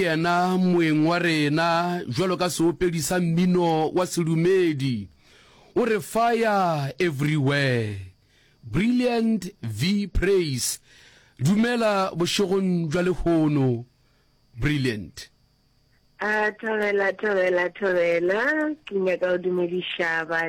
Yena moeng wa rena bjalo ka seopedi sa mmino wa sedumedi o re Fire Everywhere. Brilliant V Praise Dumela bošegong bja lehono Brilliant. A, thobela, thobela, thobela. Ke nyaka go dumediša ba.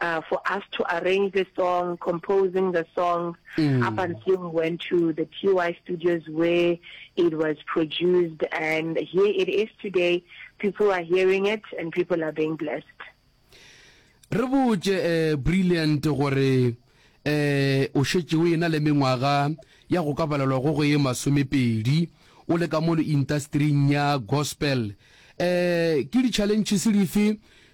uh, for us to arrange the song, composing the song, mm. up until we went to the TY studios where it was produced. And here it is today. People are hearing it and people are being blessed. re botse eh, brilliant gore eh o shetse o ena le mengwaga ya go ka balelwa go go e masomepedi o le ka mo industry-ing ya gospel eh ke di-challenges dife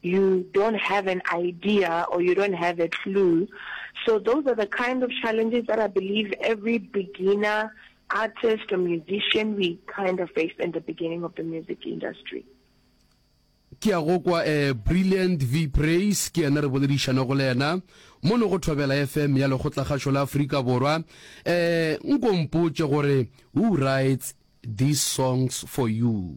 You don't have an idea or you don't have a clue. So those are the kind of challenges that I believe every beginner artist or musician we kind of face in the beginning of the music industry. ke ya go kwa eh, brilliant v praise ke yena re boledišana go le yena mo ne go thobela fm ya lekgotlakgašo la aforika borwa eh nkompotše gore who writes these songs for you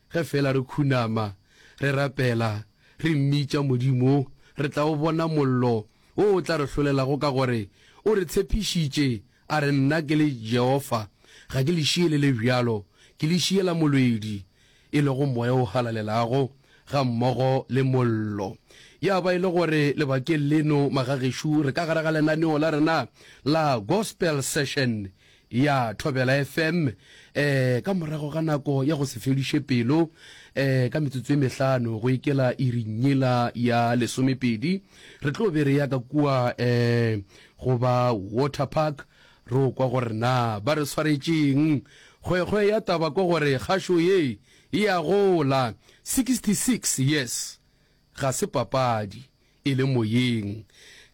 Ge feela re khunama, re rapela, re mmitša Modimo, re tla o bona mollo wo o tla re hlolelago ka gore o re tshepišitše, a re, Nna ke le Jehofa, ga ke le šie le le bjalo, ke le šiela molwedi, e lego moya o galalelago, gammogo le mollo. Ya ba e le gore lebakeng leno, magagešo, re ka gare ga lenaneo la rena la Gospel Session Ya Thobela FM, eh, ka morago ga nako ya go se feliše pelo, eh, ka metsotso e mehlano go ikela iring yela ya lesomepedi, re tlo be re ya ka kua, eh, go ba Water Park, ro kwa gore na ba re swaretšeng. Kgwekgwe ya taba ko gore kgašo ye e a gola, 66 years ga se papadi. e le moyeng.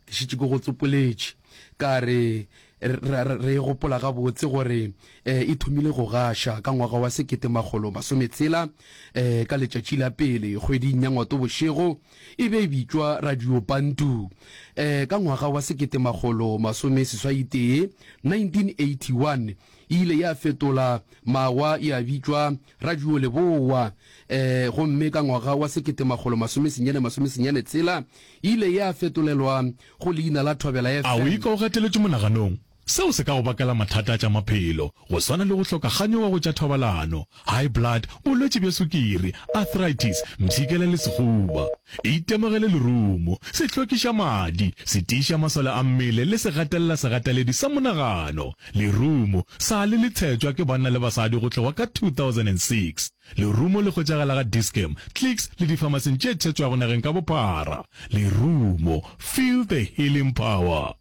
Ke šetše ke go tsopoletše ka re, re, re e gopola gabotse gore e, e thomile go gaša ka ngwaga wa sekete makgolo masome tshela, e, ka letšatši la pele kgweding ya Ngwato bošego. E be e bitšwa Radio Bantu, e, ka ngwaga wa sekete makgolo masome seswai tee, 1981, e ile ya fetola mawa ya bitšwa Radio Leboa, e, gomme ka ngwaga wa sekete makgolo masome senyane masome senyane tshela e ile ya fetolelwa go leina la Thobela FM. A o ikwa o gateletšwe monaganong? Seo se ka go bakela mathata a tša maphelo, go swana le go hloka kganyogo go tša thobalano, high blood, bolwetši bja sukiri, arthritis, mpshikela le sehuba. Itemogele lerumo, sehlokišamadi, setiišamasole a mmele le segatelelasegateledi sa monagano. Lerumo, sa le le tshetšwa ke banna le basadi go tloga ka 2006. Lerumo le hwetšagala ga Dis-Chem, Clicks le difamaseng tše tshetšwago nageng ka bophara. Lerumo, feel the healing power.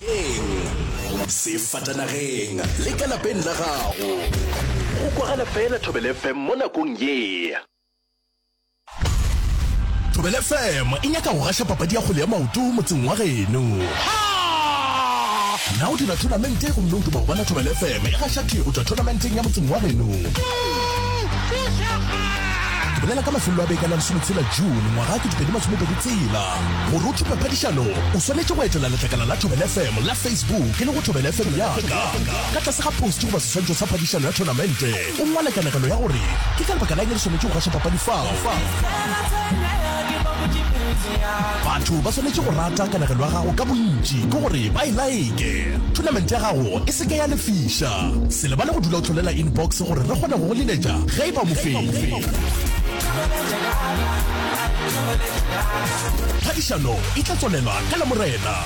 Sefatanageng, sefatanageng le ka lapeng la gago. Go kwagala fela Thobela FM mo nakong ye. Thobela FM e nyaka go gaša papadi ya kgwele ya maoto motseng wa geno. Na o dira thonamente gomme o duma go bona Thobela FM e gaša tee go tšwa thonamenteng ya motseng wa geno? bolela ka mafelelo a beke la lesometshela june ngwaga ke dipedi masomepedi tsela gore o thupe phadišano o swanetše go etela letlakala la thobel fm la facebook e le go thobel fm yaka ka tlase ga post goba seswantšho sa phadišano ya tournamente O ngwala kanegelo ya gore, Ke ka lebaka la'ng re swanetše go gaša papadi fao? Batho ba swanetše go rata kanegelo ya gago ka bontši ke gore ba e like. Thonamente ya gago e se ke ya lefiša. Se lebale go dula o hlolela inbox gore re kgone go go leletša ge e ba o mofenyi. Phadišano e tla tswalela ka Lamorena.